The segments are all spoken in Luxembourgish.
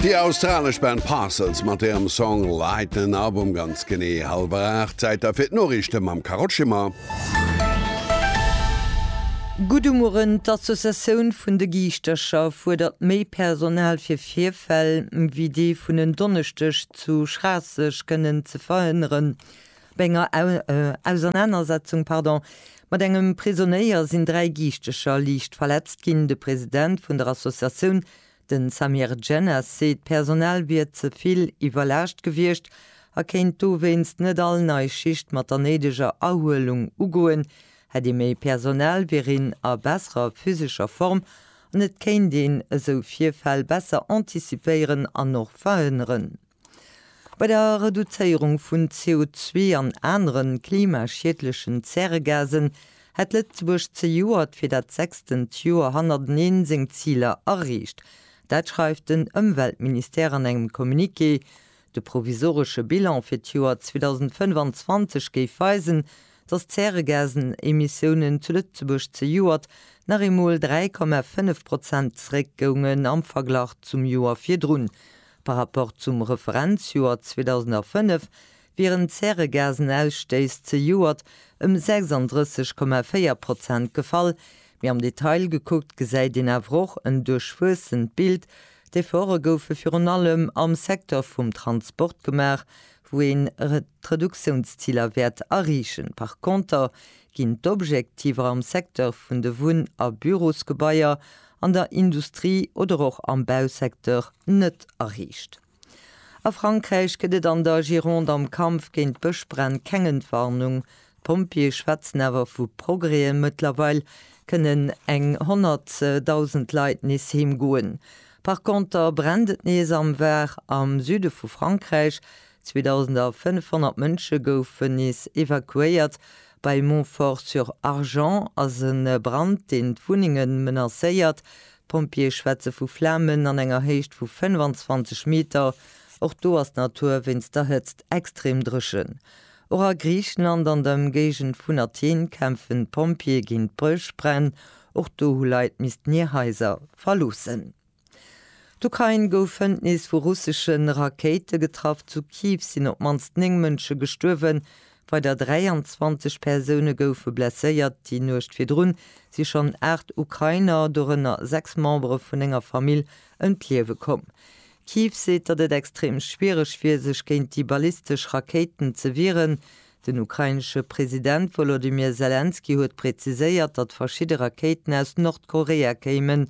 Déi australesch Band Parcels mat hirem Song Lighten Up um ganz genee hallwer 8. Zäit da fir d'Noriichte mam Carole Schimmer. Guddemueren, D'Associatioun vun de Giischtercher fuerdert méi Personal fir Virfäll wéi dee vun en Donneschdeg zu Schraasseg kënnen ze verhënneren. Bei enger Ausernanersetzung mat engem Prisonéier sinn dräi Giischtercher liicht verletzt ginn. De President vun der Associatioun Den Samir Djennas seet d'Personal wier ze vill iwwerlaascht gewiescht a kéint dowéinst net all nei Schicht mat der néideger Erhuelung ugoen. Hätt ee méi Personal, wier een a besserer physescher Form an et kéint een esou Virfäll besser antizipéieren an och verhënneren. Bei der Reduzéierung vun CO zwee an anere klimaschiedlechen Zäregasen hätt Lëtzebuerg zejoert fir dat sechstent Joer hannerteneen seng Ziler erreecht. Dat schreift den Ëmweltministère an engem Communiqué. De provisoresche Bilan fir d'Joer 2025 géif weisen, datt d'Zäregasenemissiounen zu Lëtzebuerg zejoert nach eemol 3,5 Prozent zeréckgoungen am Verglach zum Joer virdrun. Par Rapport zum Referenzjoer 2005 wieren d'Zäregasenausstëiss zejoert ëm 36,4 Prozent gefall, mee am Detail gekuckt gesäit een awer och en duerchwuessent Bild. D'Efforte goufe virun allem am Secteur vum Transport gemaach, wou een d'Reduktiounsziler wäert erreechen. Par Konter ginn d'Objektiver am Secteur vun de Wunn a Bürosgebaier, an der Industrie oder och am Bausecteur net erreecht. A Frankräich gëtt et an der Gironde am Kampf géint d'Bëschbränn keng Entwarnung. D'Pompjeeë schwätzen awer vu Progrèsen, Mëttlerweil kënnen eng 100.000 Leit nees heem goen. Par Konter brennt et nees am Var, am Süde vu Frankräich. 2.500 Mënsche goufen nees evakuéiert. Bei Montfort-sur-Argens ass e Brand, deen d'Wunnenge menacéiert. D'Pompjeeë schwätze vu Flamen an enger Héicht vu 25 Meter. Och do ass d'Natur wéinst der Hëtzt extrem dréchen. Och a Griichenland an der Ëmgéigend vun Athen kämpfen d'Pompjeeë géint d'Bëschbränn. Och do hu Leit missten hir Haiser verloossen. D'Ukrain gouf Fëndnis vu russesche Rakéite getraff, zu Kiew sinn op d'mannst 9 Mënsche gestuerwen, weider 23 Persoune goufe blesséiert. Déi Nuecht virdrun si schonn 8 Ukrainer, dorënner 6 Membere vun enger Famill, ëm d'Liewe komm. Kiew seet, datt et extrem schwiereg wier, sech géint déi ballistesch Rakéiten ze wieren. Den ukrainesche President Wolodymyr Selenskyj huet präziséiert, datt verschidde Rakéiten aus Nordkorea kéimen.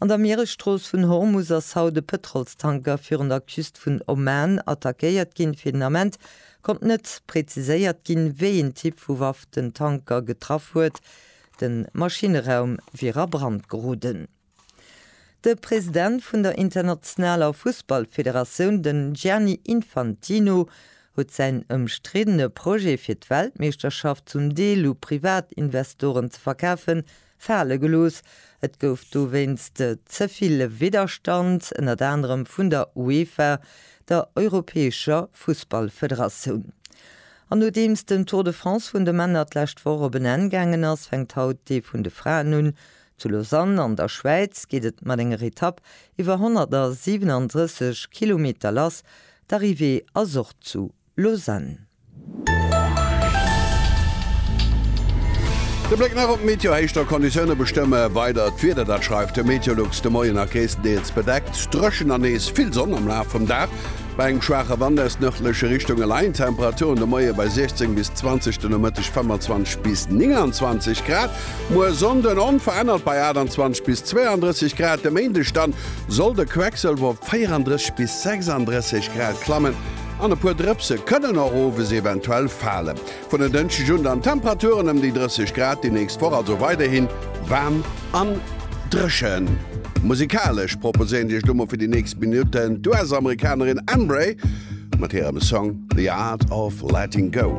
An der Mieresstrooss vun Hormus ass haut e Pëtrolstanker virun der Küst vun Oman attackéiert ginn. Fir den Ament konnt net präziséiert ginn, wéi een Typ vu Waff den Tanker getraff huet. De Maschinneraum wier a Brand geroden. De President vun der internationaler Fussballfederatioun, den Gianni Infantino, huet säin ëmstriddene Projet fir d'Weltmeeschterschaft zum Deel u Privatinvestoren ze verkafen, fale gelooss. Et gouf dowéinst ze vill Widderstand, ënnert anerem vun der UEFA, der europäescher Fussballfederatioun. An nodeems den Tour de France vun de Männer d'lescht Woch op en Enn gaangen ass, fänkt haut dee vun de Fraen un. Zu Lausanne an der Schwäiz geet et mat enger Etapp iwwer 137 Kilometer lass, d'Arrivée ass och zu Lausanne. De Bléck nach op d'Meteo, Héichter Konditioune bestëmme weider d'Wieder, dat schreift de Meteolux. De Moien nach gréisstendeels bedeckt, dréchen an nees vill Sonn am Laf vum Dag, bei engem schwaache Wand aus nërdleche Richtunge leien d'Temperaturen de Moie bei 16 bis 20, de Nomëtteg 25 bis 29 Grad. Muer Sonnden onverännert bei 28 bis 32 Grad, de Méindeg dann soll de Quecksëlwer op 34 bis 36 Grad klammen. An e puer Drëpse kënnen och owes eventuell falen. Vun en Dënschdeg un dann Temperaturen ëm déi 30 Grad, déi nächst Woch also weiderhi waarm an dréchen. Musikalesch proposéieren Dir iech elo mol fir déi nächst Minutten d'US-Amerikanerin Embrae mat hirem Song The Art of Letting Go.